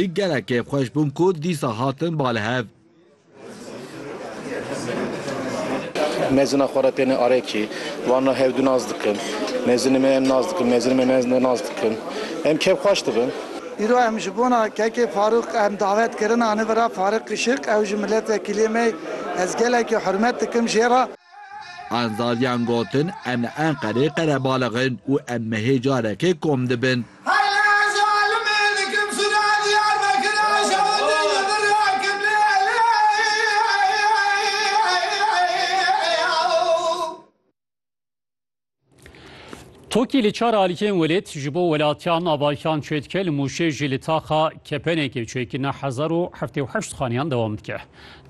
Ê gelek kêfxweş bûn ku dîsa hatin ba li hev. Mezina xwe re têne Arekî. Wan re hewdû nas dikin. Mezinê me em nas dikin, mezinê me me nas dikin. Em kêfxweş dibin. Îro em ji bona kekê Farûq em davet kirin anî vira Fariq Kişik. Ew ji miletvekîliyê me ye. Ez gelekî hurmet dikim jê re. Anzaliyan gotin, Em li Enqerê qerebalix in û em mehê carekê kom dibin. Tokî li çar alîkên welêt ji bo welatiya navayîkan çê dike li Mûşê jî li taxa kepenekê çêkirina hezar û heftê û heşt xaniyan dewam dike.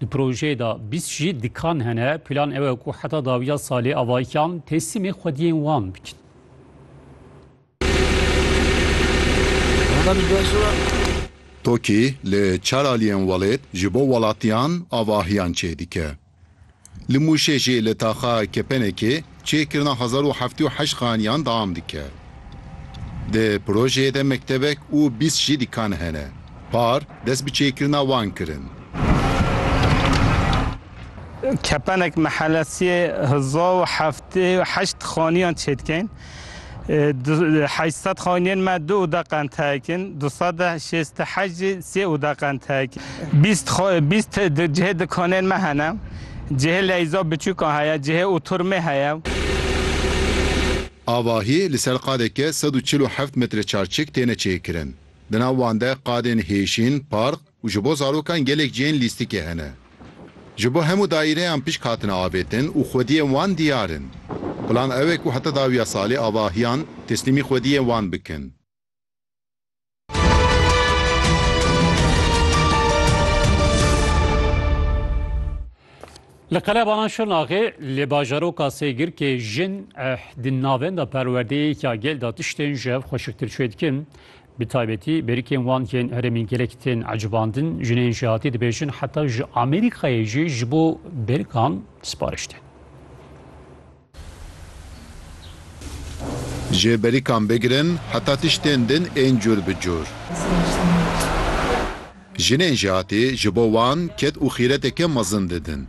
Di projeyê de bîst jî dikan hene, plan ew e ku heta dawiya salê avayîkan teslîmê xwediyên wan bikin. Tokî li çar aliyên welêt ji bo welatiyan avahiyan çêdike. Li Mûşê jî li taxa kepenekê çêkirina hezar û heftê û heşt xaniyan dewam dike. Di projeyê de mektebek û bîst jî dîkan hene. Par dest bi çêkirina wan kirin. Kepenek Mehelesiyê hezar û heftê û heşt xaniyan çêdike. Heşt sed xaniyên me du oda qentehek in, du sed û şêst û heşt jî sê oda qentehek in. Bîst bîst cihê dikanên me hene, cihê leyza biçûkan heye, cihê oturmê heye. Avahî li ser qadeke sed û çil û heft metreçarçik têne çêkirin. Di nav wan de qadên hêşîn, park, û ji bo zarokan gelek cihên lîstikê hene. Ji bo hemû daîreyan pişk hatine avêtin û xwediyên wan diyar in. Plan ew e ku heta dawiya salê avahiyan teslîmî xwediyên wan bikin. Li qelebanan Şirnaxê li bajaroka Sêgirkê jin di navenda perwerdeyê ya gel de tiştên ji hev xweşiktir çêdikin. Bi taybetî berikên wan yên herêmî gelek tên ecibandin, jinên jêhatî dibêjin heta ji Amerîkayê jî ji bo berikan sipariş tên. Ji berikan bigirin heta tiştên din ên cûr bi cûr. Jinên jêhatî ji bo wan ked û xîreteke mezin didin.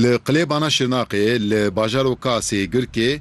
Li Qilêbana Şirnaqê li bajaroka Sêgirkê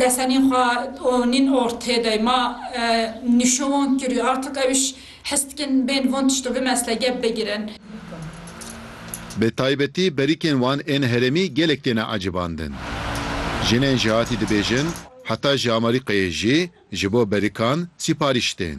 Lesenîn xwe û nîn ortê de ma nîşo wan kirî artik ewîş hes dikin bên van tişto bi mesle gep bigirin. Bi taybetî berîkên wan ên herêmî gelek têne ecibandin. Jinên jihatî dibêjin heta ji Amerîkayê jî ji bo berîkan sîparîş tên.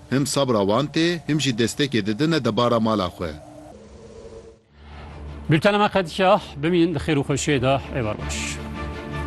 Him sabra wan tê, him jî destekê didine debara mala xwe. Bültena me qedîya bimînin di xêr û xweşiyê de ê berbaş.